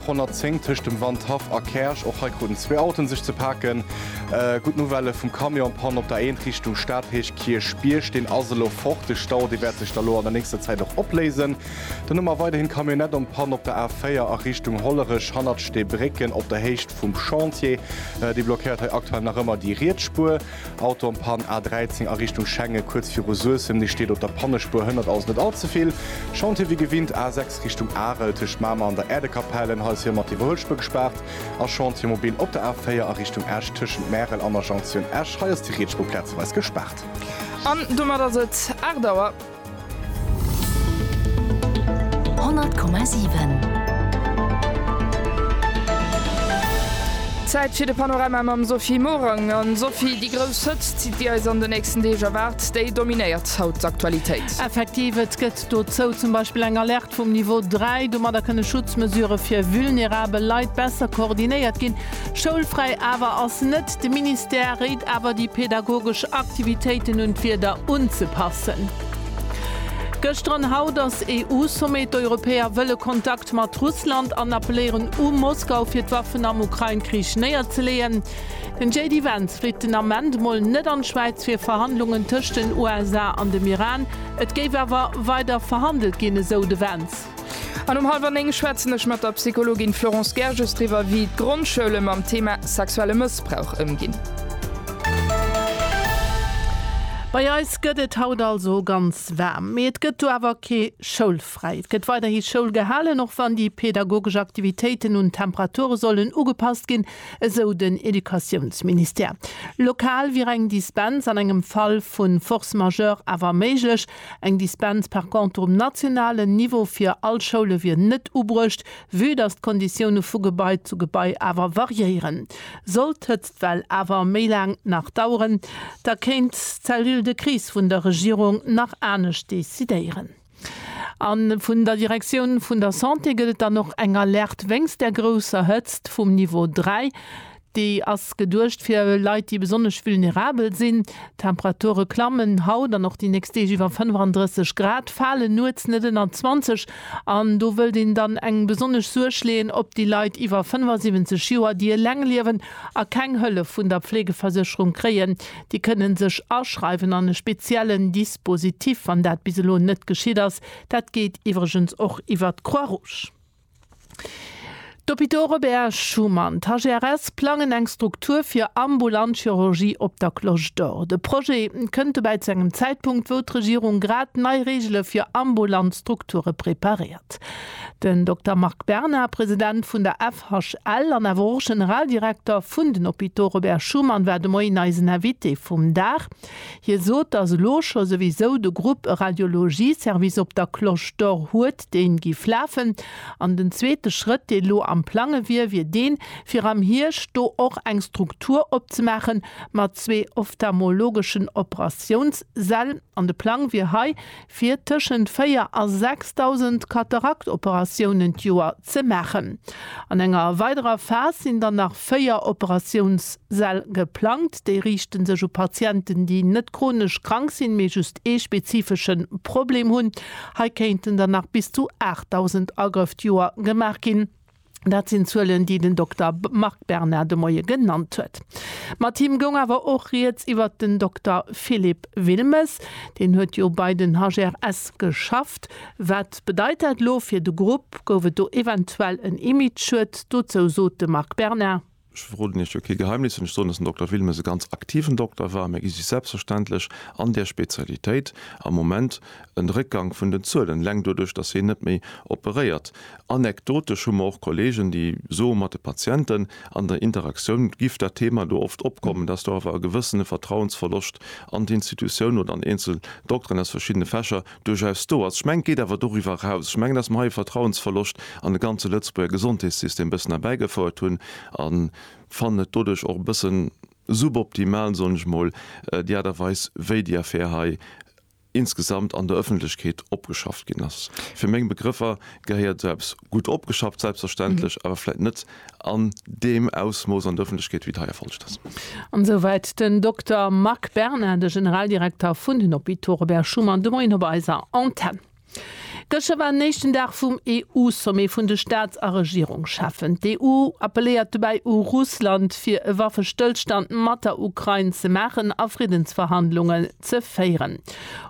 110 tëscht dem Wandhaff a Käerch. Och hei kruten zwee Autoen sech ze paken. Gutt Nouvelle vum Camion, Pann op der Eent Richtung Stadhéich Kierchbierg. Deen ass elo fort. De Stau dee wäert sech da lo an der nächster Zäit och opléisen. Dann hu mer weiderhin Camionnette en panne op der A4 a Richtung Hollerech hannert de Brécken op der Héicht vum Chantier. Déi blockéiert hei aktuell nach ëmmer déi riets Spuer. Auto an Pann, A 13 a Richtung Schengen, kuerz viru Suessem. Ni steet op der Pannespuer, hënnert also net all ze vill. Chantier wéi gewinnt, A 6 Richtung Arel, tëscht Mamer an der Äerdekapellen. Hei ass hie mat Iwwerhuelspuer gespaart. A Chantier mobil op der A 4 a Richtung Esch, tëschent Märel an der Jonction Esch. Hei ass déi Rietspuer plazeweis gespaart. An domat ass et 8 Auer. Zäit fir de Panorama mam Sophie Morang. A Sophie, déi grouss Hëtzt, déi eis an den nächsten Deeg erwaart, déi dominéiert haut d'Aktualitéit. Effektiv, et gëtt dozou zum Beispill eng Alerte vum Niveau 3. Domadder kënne Schutzmesurë fir vulnerabel Leit besser koordinéiert ginn. Schoulfräi awer ass net. De Ministère réit awer déi pedagogesch Aktivitéiten un d'Wieder unzepassen. Gëschter an haut ass EU-Sommet. D'Europäer wëlle Kontakt mat Russland an appeléieren u Moskau fir d'Waffen am Ukrain-Krich néierzeleeën. Den JD Vance flitt den Ament mol net an d'Schwäiz fir Verhandlungen tëscht den USA an dem Iran. Et géif awer weider verhandelt ginn, esou de Vance. An um hallwer 9 schwätzen ech mat der Psychologin Florence Gerges driwwer, wéi d'Grondschoule mam Thema sexuelle Mëssbrauch ëmginn. Bei eis gëtt et haut also ganz waarm, mee et gëtt do awer kee Schoulfräi. Et gëtt weiderhi Schoul gehalen, och wann déi pedagogesch Aktivitéiten un d'Temperature sollen ugepasst ginn, esou den Educatiounsministère. Lokal wier eng Dispens an engem Fall vu Force majeure awer méiglech, Eng Dispens par contre um nationalen Niveau fir all Schoule wier net ubruecht, vue dass d'Konditioune vu Gebai zu Gebai awer variéieren. Sollt d'Hëtztwell awer méi laang nach daueren, da kéint d'Cellule de crise vun der Regierung nach anescht decidéieren. A vun der Direktioun vun der Santé gëtt et dann och eng Alerte wéinst der grousser Hëtzt vum Niveau 3. Déi ass geduecht fir Leit, déi besonnesch vulnerabel sinn. D'Temperature klammen haut an och déi nächst Deeg iwwer 35 Grad, fale nuets net ënner 20 an do wëllt een dann eng besonnesch Suerg leeën op déi Leit iwwer 75 Joer, déi eleng liewen a keng Hëllef vun der Pflegeversécherung kréien. Déi kënne sech aschreiwen an e speziellen Dispositif, wann dat bis elo net geschitt ass. Dat geet iwwregens och iwwer d'Croix-Rouge. D'Hôpitaux Robert Schuman, d'HGRS, plangen eng Struktur fir ambulant Chirurgie op der Cloche d'Or. De Projet kënnt dobäi zu engem Zäitpunkt, wou d'Regierung grad nei Reegele fir ambulant Strukture preparéiert. Den Dokter Marc Bernard, President vun der FHL an awer och Generaldirekter vun den Hôpitaux Robert Schuman, war de Moien eisen Invité vum Dag. Hie sot, datt elo scho souwisou de Grupp e Radiologie-Service op der Cloche d'Or huet. déi giff lafen, an den zweete Schrëtt, deen elo am Plange wier, wier deen, fir am Hierscht do och eng Struktur opzemaache mat zwee ophtalmologeschen Operatiounssäll. An de Plang wier hei, fir tëschent 4 a 6.000 Kataraktoperatiounen d'Joer ze maachen. An enger weiderer Phas sinn dann nach. véier Operatiounssäll geplangt. Déi riichte sech u Patienten, déi net chronesch krank sinn, mee just ee spezifesche Problem hunn. Hei kéinten der nach bis zu 8.000 Agrëff d'Joer gemaach ginn. Dat sinn Zuelen, déi den Dokter Marc Berna de Moie genannt huet. Mat him goung awer och rieds iwwert den Dokter Philippe Wilmes. Deen huet jo bei den HGRS geschafft. Wat bedeit dat elo fir de Grupp? Gouf et do eventuell en Imageschued? Dozou sot de Marc Berna. Ech verroden Iech jo kee Geheimnis, wann ech soen, datt den Dokter Wilmes e ganz aktiven Dokter war. Mir gi sech selbstverständlech an där Spezialitéit am Moment en Réckgang vun den Zuelen, eleng doduerch, datt hien net méi operéiert. Anekdotesch hu mer och Kollegen, déi soe mat de Patienten, an der Interaktioun giff dat Thema do oft opkommen, datt do awer e gewëssene Vertrauensverloscht an d'Institutioun oder an eenzel Dokteren aus verschiddene Fächer duerchaus do ass. Ech mengen, et geet awer doriwwer eraus. Ech mengen, dass mer hei e Vertrauensverloscht an de ganze Lëtzebuerger Gesondheetssystem e bëssen erbäigefouert hunn a fannen et doduerch och e bëssen suboptimal, soen ech mol, déi Aart a Weis, wéi déi Affär hei insgesamt an der Öffentlechkeet opgeschafft ginn ass. Fir meng Begrëffer gehéiert esou eppes gutt opgeschafft, selbstverständlech, awer vläicht net an deem Ausmooss an der Ëffentlechkeet, wéi et hei erfollegt ass. An esou wäit den Dokter Marc Berna, de Generaldirekter vun den Hôpitaux Robert Schuman de Moien op eiser Antenn. Gëschter war den éischten Dag vum EU-Sommet vun de Staats a Regierungscheffen. D'EU appelléiert dobäi u Russland, fir e Waffestëllstand mat der Ukrain ze maachen a Friddensverhandlungen ze féieren.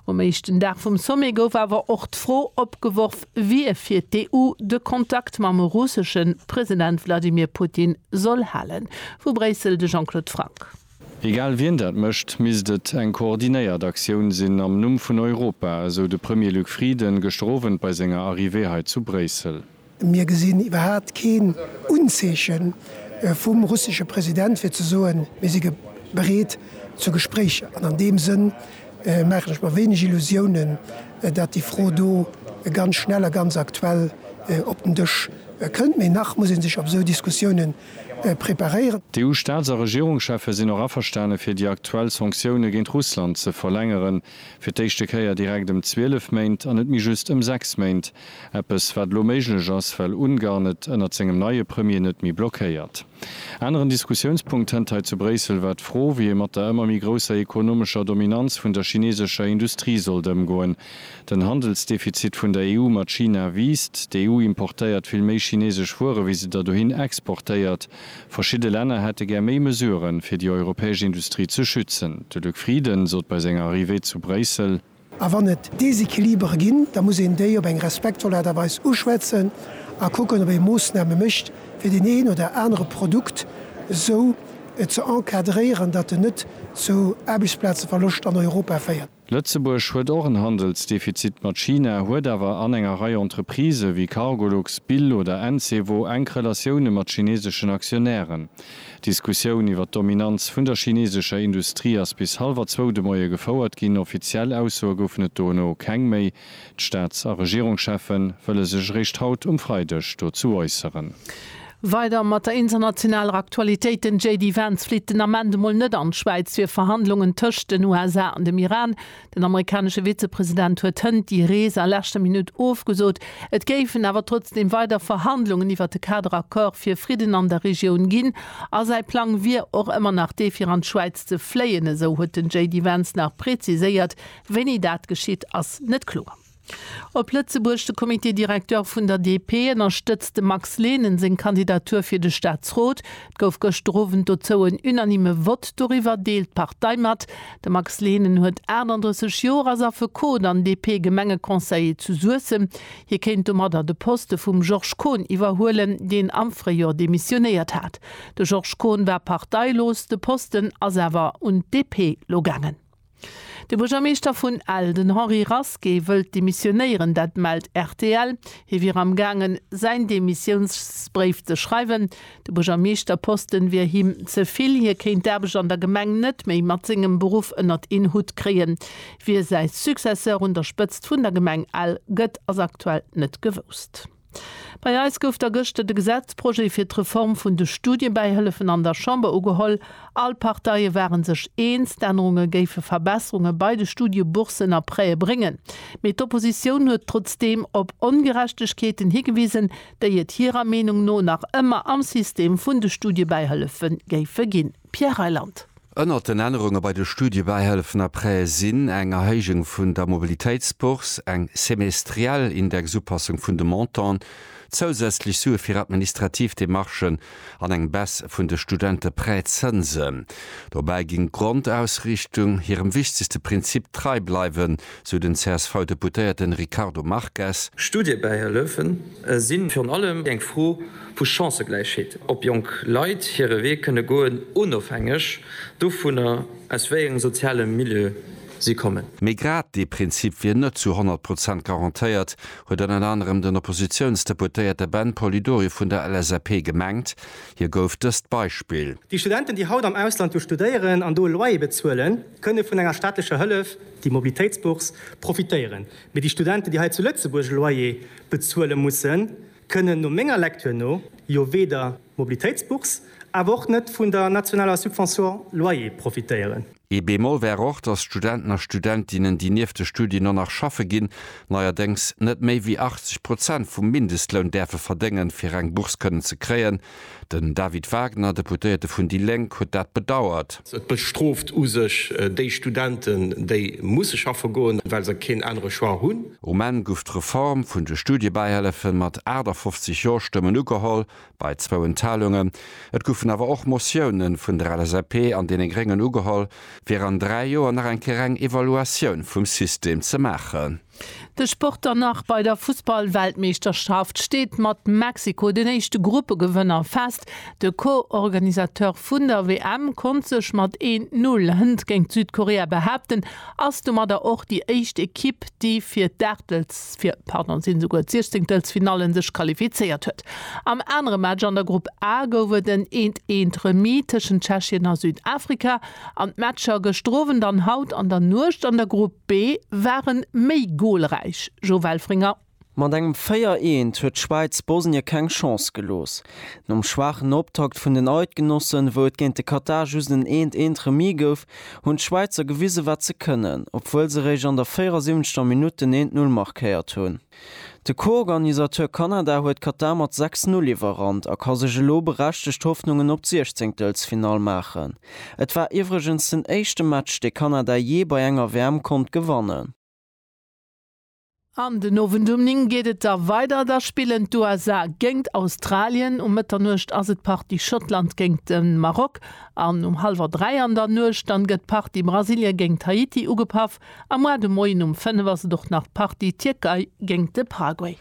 Um éischten Dag vum Sommet gouf awer och d'Fro opgeworf, wier fir d'EU de Kontakt mam russesche President Wladimir Putin soll halen. Vu Bréissel de Jean-Claude Franck. Egal wien dat mécht, misst et eng koordinéiert Aktioun sinn am Numm vun Europa, esou de Premier Luc Frieden gëschter Owend bei senger Arrivée hei zu Bréissel. Mir gesinn iwwerhaat keen Unzeechen vum russesche President fir ze soen, mir si bereet zu Gespréicher an an deem Sënn maachen ech mer wéineg Illusiounen, dat déi Fro do ganz schnell a ganz aktuell op den Dësch kënnt. Mee nach muss ee sech op esou Diskussiounen preparéieren. D'EU-Staats a Regierungscheffe sinn och averstane fir déi aktuell Sanktioune géint Russland ze verlängeren, fir d'éischte Kéier direkt ëm 12 Méint an net méi just ëm 6 Méint. Eppes wat elo méiglech ass, well Ungarn et ënnert sengem neie Premier net méi blockéiert. Aneren Diskussiounspunkt hënt hei zu Bréissel war d'Fro, wéi ee mat der ëmmer méi grousser ekonomescher Dominanz vun der chinesescher Industrie sollt ëmgoen. Den Handelsdefizit vun der EU mat China wiisst. D'EU importéiert vill méi chinesesch Wuere wéi se der dohin exportéiert. Verschidde Länner hätte gär méi Mesuren, fir déi europäesch Industrie ze schützen. De Luc Frieden sot bei senger Arrivée zu Bréissel. A wann et Desequilibere ginn, da muss een déi op eng respektvoll Aart a Weis uschwätzen a kucken, ob ee Moossname mécht, fir deen een oder anere Produkt esou ze encadréieren, datt en net zu Aarbechtsplazeverloscht an Europa féiert. Lëtzebuerg huet och en Handelsdefizit mat China, huet awer an enger Rei Entreprisë wéi Cargolux, Bill oder Encevo enk Relatioune mat chineseschen Aktionären. D'Diskussioun iwwer d'Dominanz vun der chinesescher Industrie ass bis hallwer zwou de Moie gefouert ginn. Offiziell Aussoe goufen et dono keng méi. D'Staats a Regierungscheffe wëlle sech eréischt haut um Freideg dozou äusseren. Weider mat der internationaler Aktualitéit, Den JD Vance flitt den Ament emol net an d'Schwäiz fir Verhandlungen tëscht den USA an dem Iran. Den amerikanesche Vizepresident huet hënt déi Rees a leschter Minutt ofgesot. Et géifen awer trotzdeem weider Verhandlungen iwwert de Kader Accord fir Fridden an der Regioun ginn a säi Plang wier och ëmmer nach dee fir an d'Schwäiz ze fléien, esou huet den JD Vance nach preziséiert. Wéini dat geschitt, ass net kloer. Op Lëtzebuerg, De Comité directeur vun der DP ënnerstëtzt dem Max Lehnen seng Kandidatur fir de Staatsrot. Et gouf gëschter Owend dozou en unanime Vott. Doriwwer deelt d'Partei mat, De Max Lehnen huet 38 Joer, ass Affekot an DP-Gemengeconseiller zu Suessem. Hie kéint domadder de Poste vum Georges Kohn iwwerhuelen, deen am Fréijor demissionéiert hat. De Georges Kohn war parteilos, de Posten ass awer un d'DP lo gaangen. De Buergermeeschter vun Ell, den Henri Rasqué, wëllt demissionéieren, dat mellt rtl. Hie wier am gaangen, säin Demissiounsbréif ze schreiwen. De Buergermeeschterposten wier him ze vill. Hie kéint d'Aarbecht an der Gemeng net méi mat sengem Beruff ënnert een Hutt kréien. Wie säi Successeur un der Spëtzt vun der Gemeng Ell gëtt, ass aktuell net gewousst. Bei eis gouf da gëschter de Gesetzprojet fir d'Reform vun de Studiebäihëllefen an der Chamber ugeholl. All Parteie ware sech eens, d'Ännerunge géife Verbesserunge bei de Studieboursen a Prêtë bréngen. Mee d'Oppositioun huet trotzdeem op Ongerechtegkeeten higewisen, déi et hirer Meenung no nach ëmmer am System vun de Studiebäihëllefe géife ginn. Pierre Reyland. Ënnert den Ännerunge bei de Studiebäihëllefen a Prêtë sinn, eng Erhéijung vun der Mobilitéitsbourse, eng semestriell Indexupassung vun de Montanten, zousätzlech Sue fir administrativ Demarchen an eng Baisse vun de Studenteprêtszënsen. Dobäi ginn d'Grondausrichtung hirem wichtegste Prinzip trei bleiwen, sou den CSV-Deputéierte Ricardo Marques. Studiebäihëllefen sinn virun allem eng Fro, Vu Chancëgläichheet, ob jonk Leit hire Wee kënne goen, onofhängeg dovunner, aus wéi engem soziale Milieu si kommen. Mee grad dee Prinzip wier net zu 100 Prozent garantéiert, huet ënner anerem den Oppositiounsdeputéierte Ben Polidori vun der LSAP gemengt. Hie gouf dëst Beispill. Déi Studenten, déi haut am Ausland jo studéieren an do e Loyer bezuelen, kënne vun enger staatlecher Hëllef, déi Mobilitéitsbourse, profitéieren. Mee déi Studenten, déi hei zu Lëtzebuerg e Loyer bezuele mussen, kënnen no menger Lektür no jo weder Mobilitéitsbourse awer och net vun der nationaler Subvention loyer profitéieren. Ee Bémol wär och, dass d'Studenten a Studentinnen, déi nieft de Studien och nach schaffe ginn, neierdéngs net méi wéi 80 Prozent vum Mindestloun däerfe verdéngen, fir eng Bourse kënnen ze kréien. Den David Wagner, Deputéierte vun déi Lénk, huet dat bedauert. Et bestrooft u sech déi Studenten, déi musse schaffe goen, well se keen anere Choix hunn. Um Enn guff d'Reform vun de Studiebäihëllefen mat 58 Jo-Stëmmen ugeholl, bei zwou Enthalungen. Et guffen awer och Motiounen vun der LSAP an deene Gréngen ugeholl, fir an dräi Joer nach eng Kéier eng Evaluatioun vum System ze maachen. De Sport dann nach bei der Fussball-Weltmeeschterschaft steet mat Mexiko den éischte Gruppegewënner fest. De Co-Organisateur vun der WM konnt sech mat een Null hënt géint Südkorea behaapten, ass domadder och déi éischt Ekipp, déi fir d'Aachtelfir-pardon-sinn-souguer-d'Siechzenktelfinalle sech qualifizéiert huet. Am anere Match an der Grupp A gouf et en Eent-Eent-Remis tëschent Tschechien a Südafrika an d'Matcher gëschteren Owend an haut an der Nuecht an der Grupp B waren méi golräich, Jo Welfringer. Mat engem 4 Eent huet d'Schwäiz Bosnien keng Chance gelooss. Nom schwaachen Optakt vun den Eidgenossen, wou et géint de Katar just en Eent Eent Remis gouf, hunn d'Schwäizer gewisen, wat se kënnen, obwuel se réischt an der 74. Minutt den Eent Null markéiert hunn. De Co-Organisateur Kanada huet Katar mat 6, 0 iwwerrannt a ka sech elo berechtegt Hoffnungen op d'Siechzéngtelsfinall maachen. Et war iwwregens den éischte Match, dee Kanada jee bei enger WM konnt gewannen. An den Owend um 9 geet et da weider, da spillen d'USA géingt Australien, um Mëtternuecht ass et d'Partie Schottland géingt de Maroc an um hallwer 3 an der Nuecht dann gëtt d'Partie Brasilien géingt Haiti ugepaff. Am Mois de Moien um 5 ass et och nach d'Partie Tierkei géingt de Paraguay.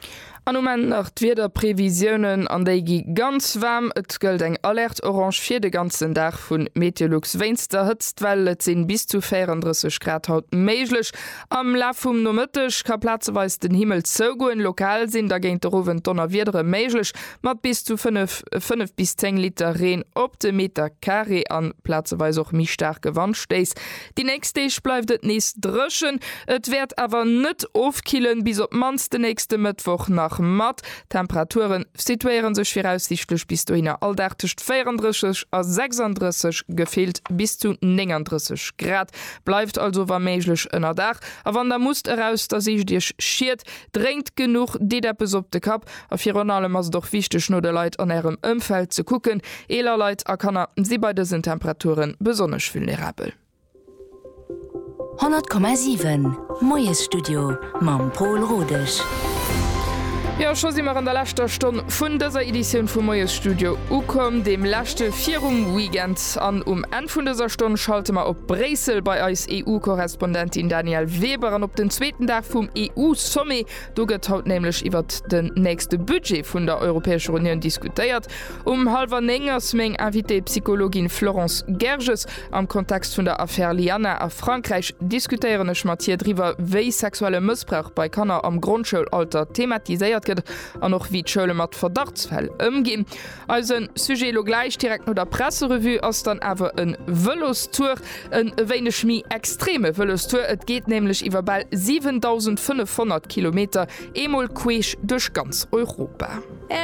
An um Enn nach d'Wiederprevisiounen, an déi gi ganz waarm. Et gëllt eng Alerte orange fir de ganzen Dag vu Meteolux wéinst der Hëtztwell. Et sinn bis zu 34 Grad haut méiglech. Am Laf vum Nomëtteg ka plazeweis den Himmel zougoen, lokal sinn da géint de Owend Donnerwiedere méiglech mat bis zu 5, 5 bis 10 Liter Reen op de Meter Carré an plazeweis och méi staarke Wandstéiss. Déi nächst Deeg bleift et nees dréchen, et wäert awer net ofkillen, bis op d'mannst de nächste Mëttwoch nach mat. D'Temperature situéiere sech viraussiichtlech bis dohinner all Dag tëscht 34 a 36, gefillt bis zu 39 Grad. Bleift also wa méiglech ënnerdaach a wann der musst eraus, da sicht iech Schied, drénkt genuch, deet eppes op de Kapp A virun allem ass et och wichteg no de Leit an Ärem Ëmfeld ze kucken. Eeler Leit a Kanner si bei dësen Temperature besonnesch vulnerabel. 100,7 Moiesstudio mam Paul Rodesch. Jo, scho si mer an der leschter Stonn vun dëser Editioun vum Moiesstudio ukomm, deem leschte virum Weekend. An um Enn vun dëser Stonn schalte mer op Bréissel bei eis EU-Korrespondentin Danièle Weber an op den zweeten Dag vum EU-Sommet Do gëtt haut nämlech iwwert den nächste Budget vun der Europäescher Unioun diskutéiert. Um hallwer néng ass meng Invitée Psychologin Florence Gerges. Am Kontext vun der Affär Lianna a Frankräich diskutéieren ech mat hir driwwer, wéi sexuelle Mëssbrauch bei Kanner am Grondschoulalter thematiséiert gëtt an och wéi d'Schoule mat Verdachtsfäll ëmginn. Eisen Sujet elo gläich direkt no der Presserevue ass dann awer en Vëlostour, en e wéineg méi extreme Vëlostour. Et geet nämlech iwwer bal 7.500 Kilometer eemol queesch duerch ganz Europa.